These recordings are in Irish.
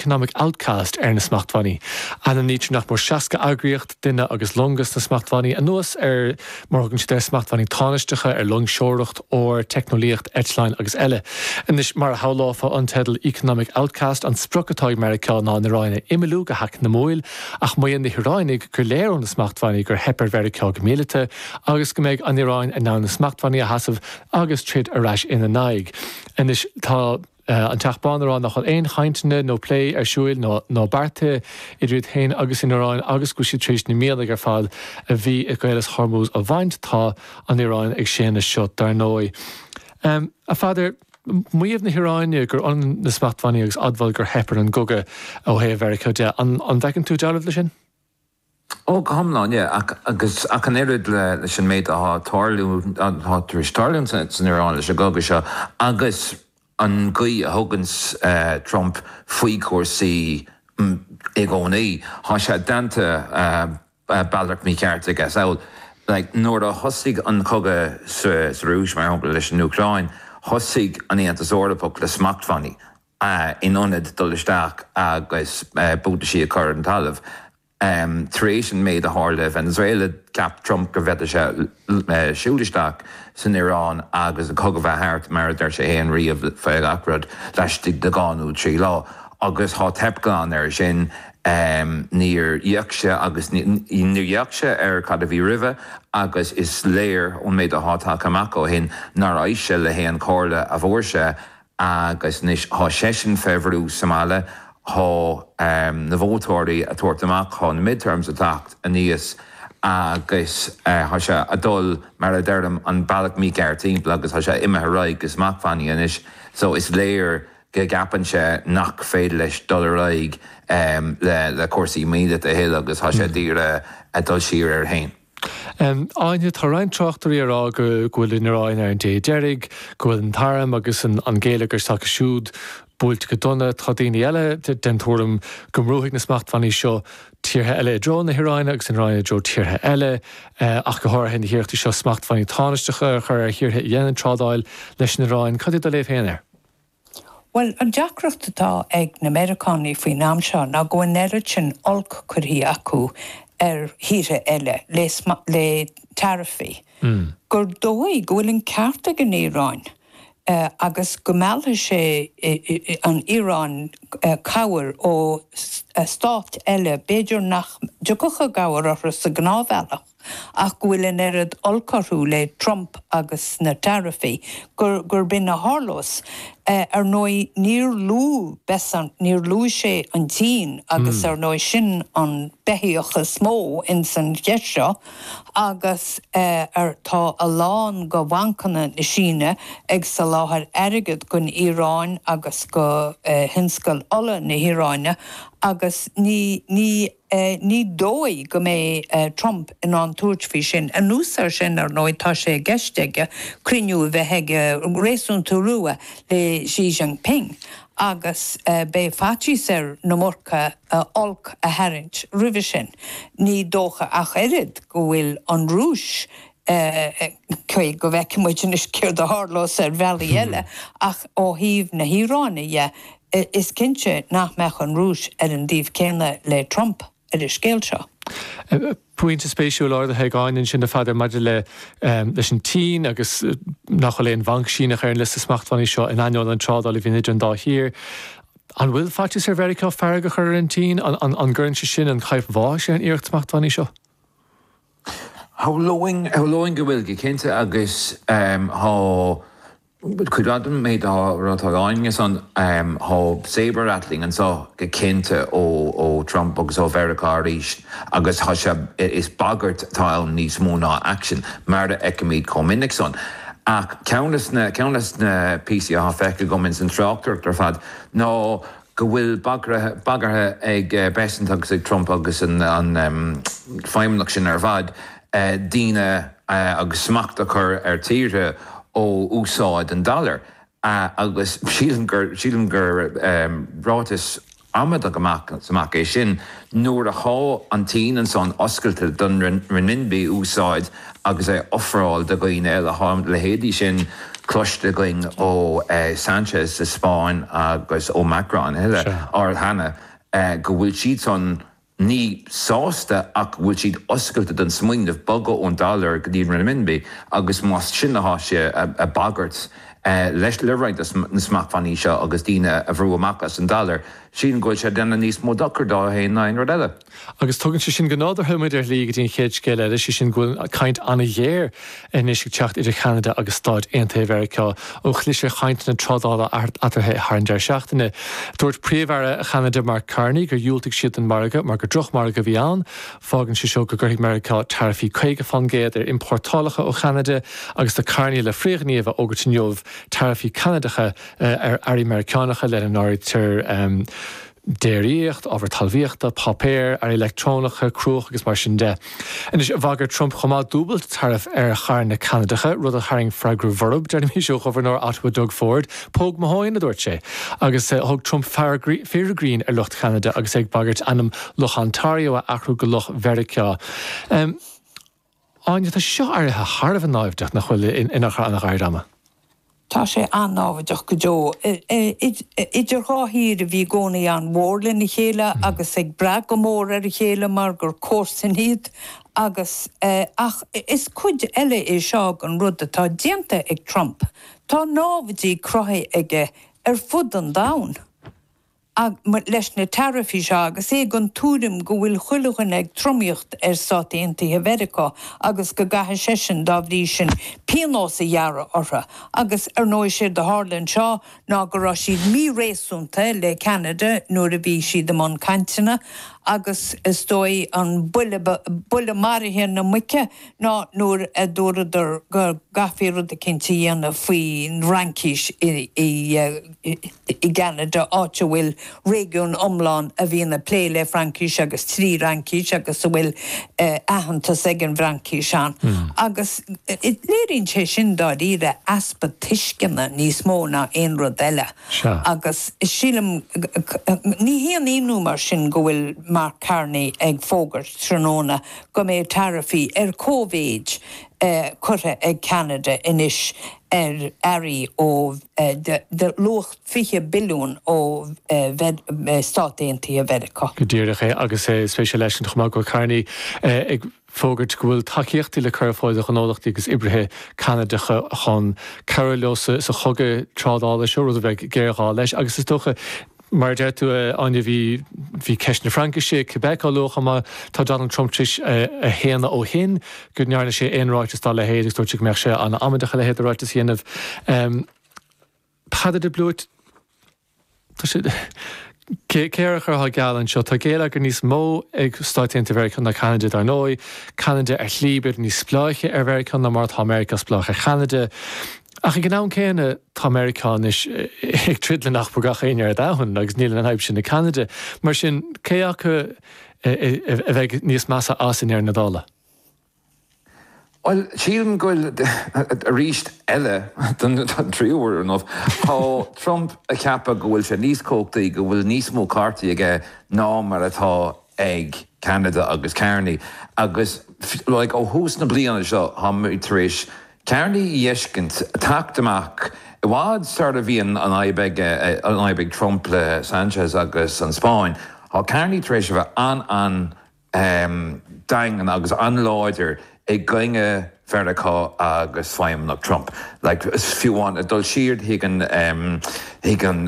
economic outcast ar na smachtbhannaí. Ainmnítear nach mór 60 eagraíocht, duine agus longa sna smachtbhannaí, anuas ar mar a thugann siad air, smachtbhannaí tánaisteacha ar loingseoireacht, ór, teicneolaíocht, eitleáin agus eile. Anois, mar a shamhlófá ón teideal economic outcast, an sprioc atá ag Meiriceá ná an Iaráin a imeallú go heacnamúil, ach maíonn na hIaráinigh gur léir ó na smachtbhannaí gur theip ar Mheiriceá go míleata agus go mbeidh an Iaráin in ann na smachtbhannaí a sheasamh agus troid ar ais ina n-aghaidh. Anois, tá. An Teach Bán ag rá nach bhfuil aon chainteanna nó plé ar siúil ná beartaithe idir iad féin agus an Iaráin agus go bhfuil siad tar éis na mianaigh ar fad a bhí i gCaolas Hormuz a bhaint. Tá an Iaráin ag séanadh seo, dar ndóigh. A Pheadair, maíomh na hIaráine gur ionann na smachtbhannaí agus admháil gur theip ar an gcogadh ó thaobh Mheiriceá de, an bhfeiceann tú dealramh leis sin? Ó, go hiomlán, yeah, ach, agus, ach an oiread leis an méid atá á tarlú, atá tar éis tarlú san Iráin leis an gcogadh seo agus an gcaoi a thugann Trump faoi chúrsaí i gcónaí, tá sé déanta bealach mícheart aige. Samhail, like, nuair a thosaigh an cogadh sa Rúis, mar shampla, leis an Úcráin, thosaigh an tAontas Eorpach le smachtbhannaí in ionad dul isteach agus buataisí a chur ar an talamh. Tar éis an méid a tharla i Venezuela, cheap Trump go bhféadfadh sé siúl isteach san Iaráin agus an cogadh bheith thart, mar a deir sé fhéin riamh, faoi gach rud, laistigh de dhá nó trí lá. Agus thá teipthe glan air sin. Níor d'fhéach sé agus níor d'fhéach sé ar cad a bhí roimhe agus is léir ón méid athá tagtha amach ó shin nár éist sé le haon chomhairle a bhfuair sé Agus anois thá seisean fé bhrú sa mbaile, thá na vótóirí a' tabhairt amach, thá na midterms a' teacht aníos agus thá sé a' dul, mar a deirim, an bealach mícheart thimpeall agus thá sé imithe ar aghaidh go smachtbhannaí anois so is léir go gceapann sé nach féidir leis dul ar aghaidh le cúrsaí míleata a thuilleadh agus thá sé a d'iarraidh a dhul siar air fhéin. Áine, Tá roinnt tráchtairí ag rá go bhfuil an Iaráin ar an dé deiridh, go bhfuil an t-arm agus an géilleagar s'acu siúd buailte go dona. Tá daoine eile den tuairim go mbrúfaidh na smachtbhannaí seo tíortha eile i dtreo na hIaráine agus an Iaráin i dtreo tíortha eile, ach go háirithe na hiarrachtaí seo smachtbhannaí tánaisteacha a chur ar thíortha a dhéanann trádáil leis an Iaráin. Cad é do léamh féin air? Bhuel, an deacracht atá ag na Meiriceánaigh faoin am seo ná go bhfuil an oiread sin oilc curtha acu ar thíortha eile le taraifí gur dóigh go bhfuil an ceart ag an Iaráin agus go meallfaidh sé an Iaráin cabhair ó stáit eile, b'fhéidir nach dtiocfadh i gcabhair orthu sa ghnáthbhealach. ach go bhfuil an oiread olc orthu le Trump agus na taraifí gurb in a tharlós. Ar ndóigh, níor luaigh Bessent, níor luaigh sé an tSín, agus ar ndóigh sin an beithíoch is mó ins an cheist seo, agus tá a lán de bhancanna na Síne ag soláthair airgead gon Iaráin agus go thionscal ola na hIaráine, agus ní. Ní dóigh go mbeidh Trump in ann tabhairt faoi sin. Anuas air sin, ar ndóigh, tá sé i gceist aige cruinniú a bheith aige réasúnta luath le Xi Jinping agus beidh faitíos air an iomarca olc a tharraingt roimhe sin. Ní dócha ach oiread go bhfuil an Rúis Cé go bhfeicfidh muid anois céard a tharlós ar bhealaí eile, ach ó thaobh na hIaráine dhe, is cinnte nach mbeadh an Rúis ar an dtaobh céanna le Trump ar an scéal seo. Pointe spéisiúil ardaithe ag Áine ansin, a Pheadair, maidir leis an tSín agus nach bhfuil aon bhanc Síneach ar an liosta smachtbhannaí seo, in ainneoin an trádáil a bhíonn idir an dá thír. An bhfuil faitíos ar Mheiriceá fearg a chur ar an tSín? An gcuireann sé sin an chaidhp bháis ar an iarracht smachtbhannaí seo? Shamhlóinn go bhfuil, go cinnte, agus tá cuid mhaith den méid atá á rá ag Áine ansan, tá sabre-rattling anseo go cinnte ó Trump agus ó Mheiriceá arís agus tá sé, is bagairt atá ann níos mó ná aicsean, mar a fheicimid chomh minic san. Ach ceann de na píosaí atá feicthe agam ins an tráchtaireacht ar fad ná, go bhfuil bagartha ag Bessent agus ag Trump agus an feidhmeannacht sin ar fad daoine agus smacht a chur ar tíortha ó úsáid an dollar agus sílim gur ráiteas amaideach amach is amach é sin. Nuair athá an tSín ansan oscailte don renminbi úsáid agus é ofráil do dhaoine eile, thá leithéidí sin cloiste againn ó Sanchez sa Spáinn agus ó Macron eile, arl cheana, go bhfuil siad san, ní sásta ach go bhfuil siad oscailte don smaoineamh bogadh ón dollar go dtí an renminbi agus más sin athá sé ag bagairt leis le roinnt de na smachtbhannaí seo agus daoine a bhrú amach as an dollar, Sílim go bhfuil sé ag déanamh níos mó dochair dó féin ná aon rud eile. Agus tugann sé sin go nádúrtha muid ar shlí go dtí an chéad scéal eile, sé sin go bhfuil caint an-ghéar anois ag teacht idir Cheanada agus Stáit Aontaithe Mheiriceá ó chlis ar chainteanna trádála eatarthu thar an deireadh seachtaine. Dúirt Príomh-Aire Cheanada Mark Carney gur dhiúltaigh siad don mhargadh mar gur drochmhargadh a bhí ann. Fágann sé seo go gcuirfidh Meiriceá taraifí 50 faoin gcéad ar iompórtálacha ó Cheanada agus tá Carney le frithghníomh a fhógairt inniu, taraifí Canadacha ar earraí Meiriceánacha, lena n-áirítear déiríocht, ábhar talmhaíochta, páipéar, earraí leictreonacha, cruach agus mar sin de. Anois, bhagair Trump chomh maith dúbailt taraif ar charranna Ceanadacha, rud a tharraing freagra borb, déarfainnse, ó ghobharnóir Ottawa Doug Ford. Póg mo thóin, a dúirt sé. Agus thug Trump fíor grinn ar lucht Cheanada agus é ag bagairt ainm Loch Ontario a athrú go Loch Mheiriceá. Áine, Tá seo éirithe thar a bheith náimhdeach, nach bhfuil, in achar gairid ama. Tá sé an-náimhdeach go deo. Idir dhá thír a bhí i gcónaí an-mhór lena chéile agus ag brath go mór ar a chéile mar gur comharsain iad agus. ach is cuid eile é seo den rud atá déanta ag Trump. Tá námhaidí cruthaithe aige ar fud an domhain. leis na taraifí seo agus é den tuairim go bhfuil chuile dhuine ag tromaíocht ar Stáit Aontaithe Mheiriceá agus go gcaithfidh seisean, dá bhrí sin, pionós a ghearradh orthu. Agus, ar ndóigh, séard a tharla anseo ná go raibh siad míréasúnta le Ceanada nuair a bhí siad i mbun cainteanna agus, is dóigh, an buille maraithe na muice ná nuair a dúradar go gcaithfí rud eicínt a dhéanamh faoin bhFraincis i i gCeanada, áit a bhfuil réigiún iomlán a bhíonn ag plé le Fraincis agus trí Fhraincis agus a bhfuil aitheantas ag an bhFraincis ann. Agus léiríonn sé sin dáiríre easpa tuisceana níos mó ná aon rud eile. Agus sílim, ní haon ionadh mar sin go bhfuil Mark Carney ag fógairt tráthnóna go mbeidh taraifí ar comhéid curtha ag Ceanada anois ar earraí ó de luach fiche billiún ó Stáit Aontaithe Mheiriceá. Go díreach é, agus spéisiúil leis an chomh maith go raibh Carney ag fógairt go bhfuil tacaíochtaí le cur ar fáil do ghnólachtaí agus oibrithe Ceanadacha chun cabhrú leo sa chogadh trádála seo, rud a bheidh géarghá leis, agus is dócha, Mar a deir tú, a Áine, bhí bhí ceist na Fraincise i Quebec á lua chomh maith. Tá Donald Trump tar éis a shéanadh ó shin go ndearna sé aon ráiteas dá leithéid agus dúirt sé go mbeadh sé an-amaideach a leithéid de ráiteas a dhéanamh. Peadar de Blúit, Tá sé cé air a chuirfeá geall anseo? Tá géilleagar níos mó ag Stáit Aontaithe Mheiriceá ná Ceanada, dar ndóigh. Ceanada ar shlí b'fhéidir níos spleáiche ar Mheiriceá ná mar atá Meiriceá spleách ar Cheanada. Ach ag an am céanna, tá Meiriceá anois ag troid le nach mór gach éinne ar domhan, agus níl an fhadhb sin ag Ceanada. Mar sin, cé acu a bheidh níos measa as, i ndeireadh na dála? Bhuel, sílim go bhfuil, arís eile, don tríú uair ar ndóigh, tá Trump ag ceapadh go bhfuil sé níos cumhachtaí, go bhfuil níos mó cártaí aige ná mar atá ag Ceanada agus Carney. Agus, like, ó thús na bliana seo, táimid tar éis Carney a fheiscint ag teacht amach, i bhfad sara bhí an fhadhb ag Trump le Sanchez agus an Spáinn. Tá Carney tar éis a bheith an-an-daingean agus an-láidir i gcoinne Mheiriceá agus Feidhmeannacht Trump. Like fiú amháin dul siar chuig an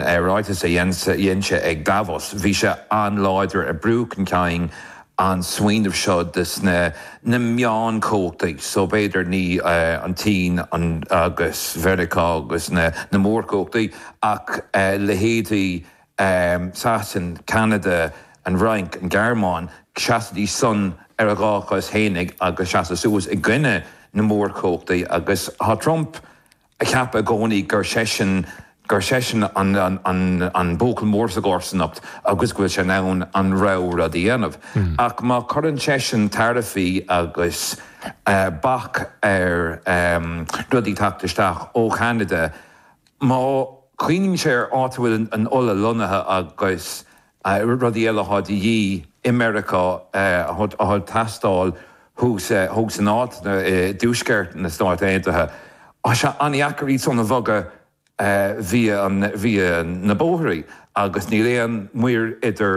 ráiteas a dhein sé ag Davos. Bhí sé an-láidir ag brú chun cinn an smaoineamh seo de sna na meáin chumhachtaí, so b'fhéidir ní an tSín agus Meiriceá agus na na mórchumhachtaí ach leithéidí Sasana, Ceanada, an Fhrainc, an Ghearmáin, seasaidís san ar a dhá chos fhéinig agus seasadh suas i gcoinne na mórchumhachtaí agus tá Trump a cheap i gcónaí gur seisean gur seisean an an an buachaill mór sa gcomharsanacht agus go bhfuil sé in ann a rogha rud a dhéanamh ach má chuireann seisean taraifí agus bac ar rudaí teacht isteach ó Cheanada má chuimhníonn sé ar áit a bhfuil an ola lonnaithe agus rudaí eile atá de dhíth i Meiriceá, atá ag teastáil thuas i dtuaisceart na Stáit Aontaithe. Tá sé an-dheacair iad san a bhogadh via na bóithrí agus níl aon muir idir.